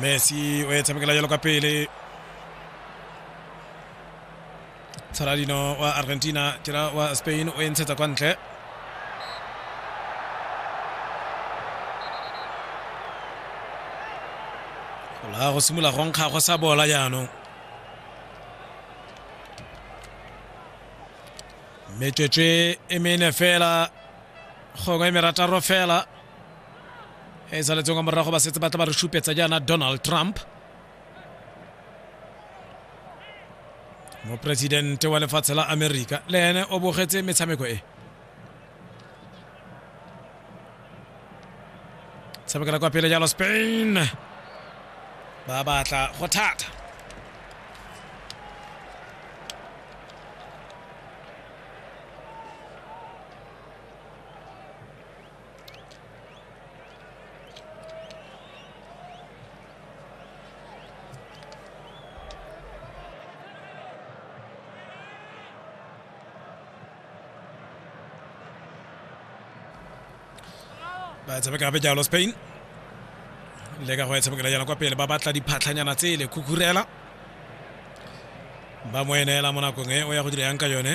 messi o e tshamekela jalo ka pele saladino wa argentina tira wa spain o e ntshetsa kwa ntle gola go simolola go nkga go sa bola jaanong metswetswe e mene fela gongwe merataro fela e saletseng ka morago ba setse ba tla ba re supetsa jaana donald trump moporesidente wa lefatshe la amerika le ene o bogetse metshameko e tshamekela kwa pele jalo spain ba batla go thata ba tshameka gape jalo spain le ka go e tshamekela jalo kwa pele ba batla diphatlhanyana tsele khukhurela ba mo eneela mo nakong e o ya go dira yang ka yone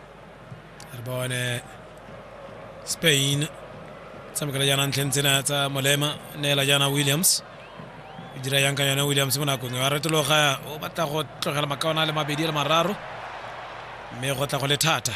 re bone spain tshamekela jaana ntlheng tsena tsa molema neela jaana williams e dira yang ka yone williams mo nakong wa retologa o batla go tlogela makaona le mabedi le mararo mme go tla go le thata